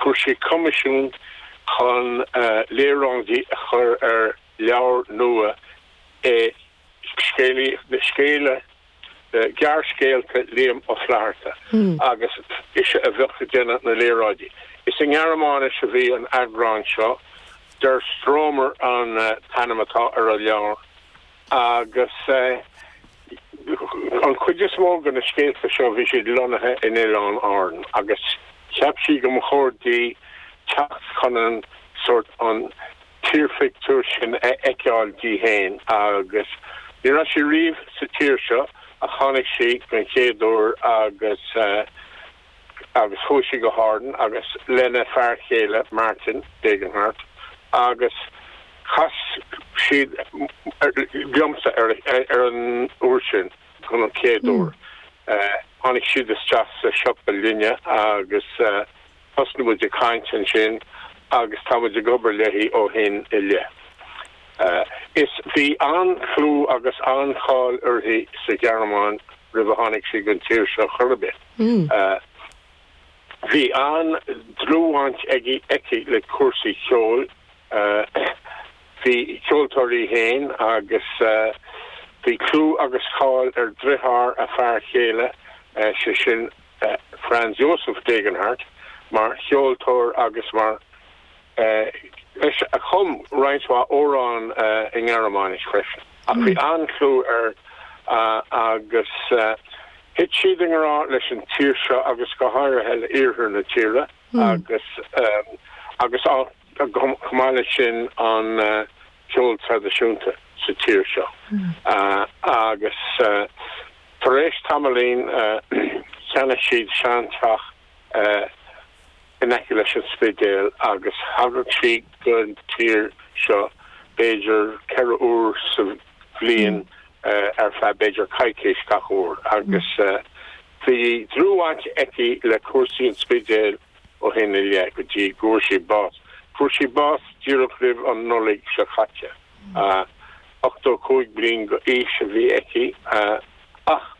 Fuair sé coimisiún chun léaráidí a chur ar leabhar nua scéalta, scéalta, gearrscéalta Liam Ó Flatharta agus ise a bheadh ag déanamh na léaráidí. Is i nGearmáinis a bhí an t-eagrán seo, Der Stromer an t-ainm atá ar an leabhar. agus an chuid is mó de na scéalta seo bhí siad lonnaithe in Oileáin Árann agus cheap sí go mba chóir di teacht chun an sórt an tírphictiúr sin a fheiceáil di féin agus ní raibh sí riamh sa tír seo ach tháinig sí den chéad uair agus agus chuaigh sí go hÁrainn agus lena fear céile Martin Degenhardt agus chas siad liomsa ar an uair sin chun an chéad uair. Tháinig siad isteach sa siopa linne agus thosnaigh muid ag caint ansin agus tá muid ag obair léi ó shin i leith. Is bhí an-chlú agus an-cháil uirthi sa Ghearmáin roimh a tháinig sí don tír seo chor ar bith. Bhí an-dlúthbhaint aige aici le cúrsaí ceoil. Ba cheoltóir í fhéin agus bhí clú agus cáil ar dheartháir a fear céile, sé sin Franz Josef Degenhardt, mar cheoltóir agus mar dhuine a chum roinnt mhaith amhrán i nGearmáinis freisin, ach bhí an-chlú air agus thit siad i ngrá leis an tír seo agus go háirithe le iarthar na tíre agus agus chomh maith leis sin an ceol traidisiúnta sa tír seo. Agus tar éis tamaillín cheannaigh siad seanteach in aice leis an Spidéal agus thagadh sí don tír seo b'fhéidir ceithre uair sa bhliain ar feadh b'fhéidir coicís gach uair agus bhí dlúthbhaint aici le cúrsaí an Spidéil ó shin i leith go dtí go bhfuair sí bás. Fuair sí bás díreach roimh an Nollaig seo caite. 85 bliain d'aois a bhí aici ach.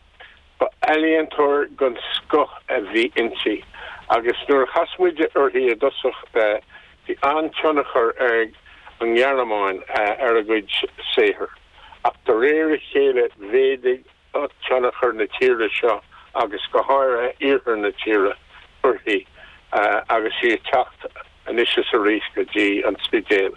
Ba ealaíontóir den scoth a bhí inti agus nuair a chas muid uirthi i dtosach bhí an-tionchar ag an nGearmáin ar a cuid saothair ach de réir a chéile mhéadaigh tionchar na tíre seo agus go háirithe iarthar na tíre uirthi agus sí ag teacht anois is arís go dtí an Spidéal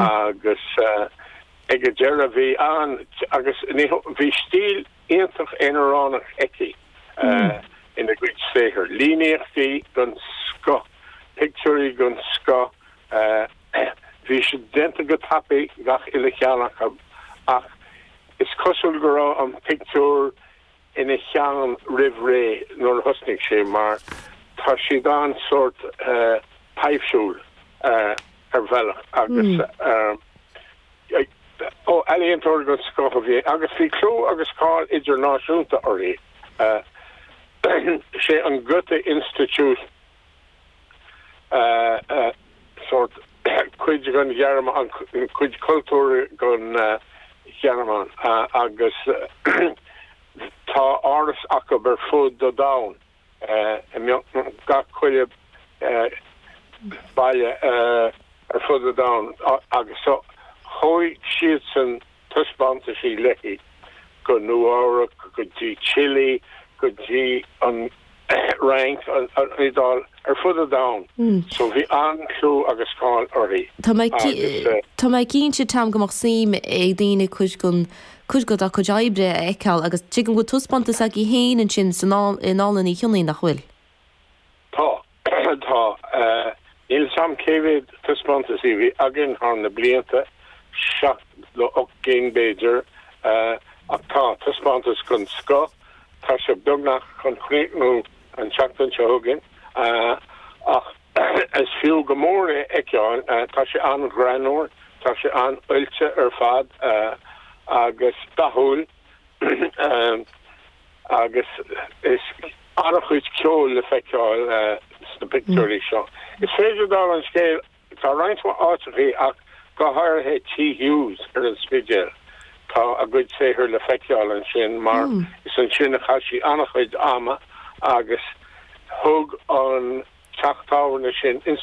agus ag an deireadh bhí an-tionchar ag an nGearmáin ar an Spidéal. iontach aonaránach aici ina gcuid saothar, líníochtaí den scoth, pictiúirí den scoth. Bhí siad déanta go tapaidh, gach uile cheann acu, ach is cosúil go raibh an pictiúr ina cheann roimh ré nuair a thosnaigh sí mar tá siad an-sórt taibhsiúil ar bhealach agus. Ealaíontóir den scoth a bhí í agus bhí clú agus cáil idirnáisiúnta uirthi. Sé an Goethe Institut sórt cuid den Ghearmáin, cuid cultúir den Ghearmáin agus tá áras acu ar fud an domhain. i mbeagnach gach chuile baile ar fud an domhain agus thóg siadsan taispeántaisí léi go Nua Eabhrac, go dtí Chile, go dtí an Fhrainc, an Iodáil, ar fud an domhain. So bhí an-chlú agus cáil uirthi. Tá mé cinnte, Tom, go mbeadh suim ag daoine cuid den cuid dá cuid oibre a fheiceáil agus tuigim go bhfuil taispeántas agaibh féin ansin i nDánlann Uí Chionnaith, nach bhfuil? Tá, tá. Níl 's a'm cé mhéad taispeántas a bhí againn thar na blianta, seacht nó ocht gcinn b'fhéidir, ach tá, taispeántas den scoth, tá sé beagnach chun críochnú an tseachtain seo chugainn ach, Is fiú go mór é a fheiceáil. Tá sé an-ghreannmhar, tá sé an-oilte ar fad agus dathúil agus is an-chuid ceoil le feiceáil sna pictiúirí seo. Is féidir dála an scéil, tá roinnt mhaith áiteachaí ach go háirithe Tigh Hughes ar an Spidéal, Tá a gcuid saothair le feiceáil ansin mar is ansin a chaith sí an-chuid ama agus thug an teach tábhairne sin inspioráid di.